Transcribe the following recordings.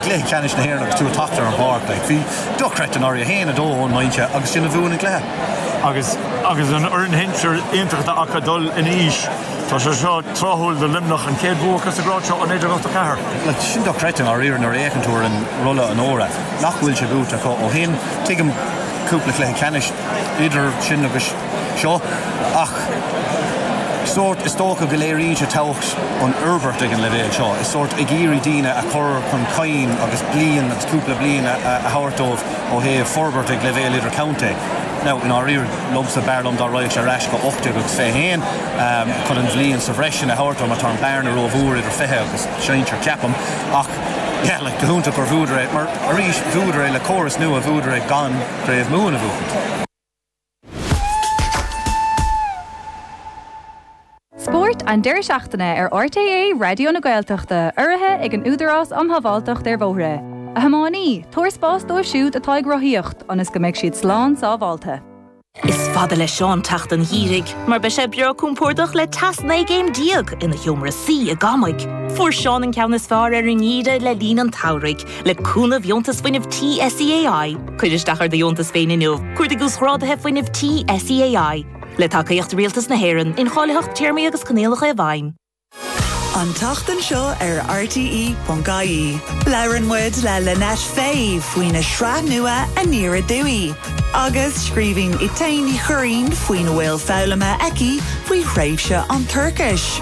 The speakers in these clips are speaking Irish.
gcluiche ceannais na hÉireann agus tú ag teacht ar an bpáirc, like, bhí dochreidte i ndáiríre, 1-2 ón mbinse agus sin a bhuaigh an cluiche. Agus, agus an fhoireann shinsir iontach atá acu ag dul in aois, tá sé seo tráthúil do Luimneach, an chéad bhua acu sa grád seo ó 1984. Like, sin dochreidte i ndáiríre nuair a fhéachann tú ar an rolla onóra nach bhfuil sé buaite acu ó shin. Tuigim cúpla cluiche ceannais idir sin agus. seo, ach sórt, is dócha go léiríonn sé tábhacht an fhoirbairt ag an leibhéal seo, is sórt ag iarraidh daoine a chur chun chinn agus bliain agus cúpla bliain a thabhairt dóibh ó thaobh forbairt ag leibhéal idirchontae. Now, i ndáiríre, domsa, b'fhearr liom dá raghadh sé ar ais go ocht déag agus fiche haon chun an bhliain sa bhreis sin a thabhairt dóibh mar tá an bearna ró mhór idir fiche agus sinsir, ceapaim, ach yeah, like, go hiontach gur bhuadar é, mar arís, bhuadar é le córas nua, bhuadar é gan Craobh Mumhan a bhuachaint. Spórt an deireadh seachtaine ar RTÉ Raidió na Gaeltachta, urraithe ag an Údarás um Shábháilteacht ar Bhóithre. A thiománaí, tabhair spás dóibh siúd atá ag rothaíocht ionas go mbeidh siad slán sábháilte. Is fada le Seán teacht an gheimhridh mar beidh sé breá compordach le teas 19 gcéim ina sheomra suí i gCamaigh. Fuair Seán an ceann is fearr ar an ngeimhreadh le linn an tsamhraidh Le cúnamh Dheontas Fuinnimh Tí SEAI, cuir isteach ar do dheontas féin inniu. Cuardaigh Uasghráduithe Fuinnimh Tí SEAI. Le tacaíocht Rialtas na hÉireann, incháilitheacht Téarmaí agus Coinníollacha i bhfeidhm. An tseachtain seo ar RTÉ.ie, labhrann muid le Lynette Fay faoina sraith nua Aniar Aduaidh, agus scríobhann Étáin Ní Churraoin faoina bhfuil foghlamtha aici faoi thréimhse an toirchis.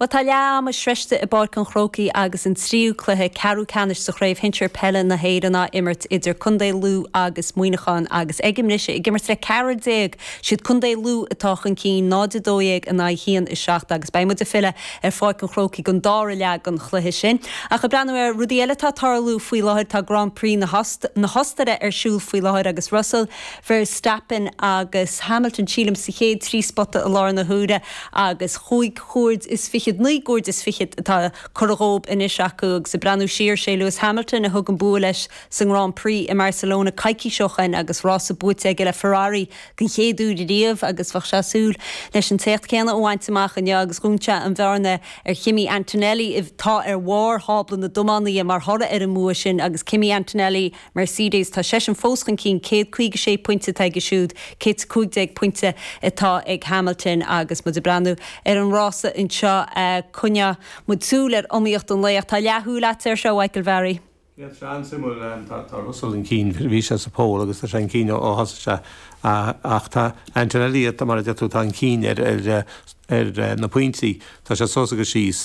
Bhuel, tá leath ama sroichte i bPáirc an Chrócaigh agus an tríú cluiche ceathrú ceannais sa Chraobh Shinsir Peile na hÉireann á imirt idir Contae Lú agus Muineachán agus ag an mbriseadh ag imirt le ceathrar déag. Siad Contae Lú atá chun cinn, 0-12 in aghaidh 1-7 agus beidh muid ag filleadh ar Pháirc an Chrócaigh don dára leath den chluiche sin. Ach ag breathnú ar rudaí eile atá ag tarlú faoi láthair, tá Grand Prix na hOstaire ar siúl faoi láthair agus Russell, Verstappen agus Hamilton, sílim, sa chéad trí spota i láthair na huaire agus chúig chuaird is fichead, naoi gcuaird is fichead atá curtha dhóibh anois acu agus ag breathnú siar, 'sé Lewis Hamilton a thug an bua leis sa nGrand Prix i mBarcelona coicís ó shoin agus rása buaite aige le Ferrari den chéad uair riamh agus bheadh sé ag súil leis an t-éacht céanna a bhaint amach inniu agus dhún sé an bhearna ar Kimi Antonelli atá ar bharr thábla na dtiománaithe mar thoradh ar an mbua sin agus Kimi Antonelli Mercedes, tá seisean fós chun cinn, céad caoga sé pointe atá aige siúd, céad 's a cúig déag pointe atá ag Hamilton agus muid ag breathnú ar an rása anseo, coinneoidh muid súil ar iomaíocht an lae ach tá leathshúil agat air seo, a Mhichael Bharry. Níl sé an-suimiúil, tá Russell chun cinn, bhí sé sa pole agus tá sé chun cinn ó thosaigh sé ach tá Antonelli, mar a deir tú, atá chun cinn ar na pointí, tá sé suas agus síos.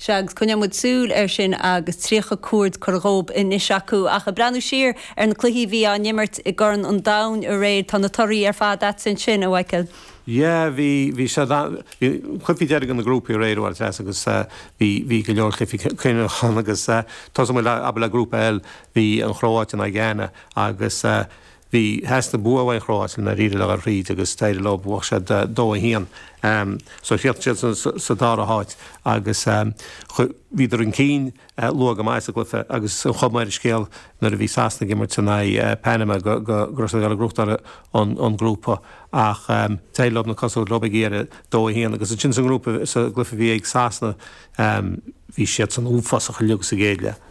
Sea, agus coinneoidh muid súil air sin agus 30 cuaird curtha dhób anois acu. Ach ag breathnú siar ar na cluichí a bhí á n-imirt i gCorn an Domhain aréir, tá na torthaí ar fad agatsa ansin, a Mhaidhcil. Yeah, bhí, bhí siad ann, bhí cluichí deiridh na ngrúpaí aréir, a Mhaitias, agus bhí, bhí go leor cluichí cinniúnacha ann agus tosaíonn muid, abair, le Grúpa L. Bhí an Chróáit in aghaidh Ghána agus, Bhí theastaigh bua ón gCróáit ansin i ndáiríre le dhul tríd agus d'éirigh leo, bhuaigh siad dó a haon. So chríochnaigh siad sa dara háit agus bhíodar chun cinn luath go maith sa gcluiche agus an chuma ar an scéal nuair a bhí Sasana ag imirt in aghaidh Panama go raibh siad ag dul ag gnóthachtáil an grúpa ach d'éirigh leo na cosa a thabhairt leo ar deireadh dó a haon agus ansin sa ngrúpa, sa gcluiche a bhí ag Sasana, bhí siadsan uafásach uilig sa gcéad leath.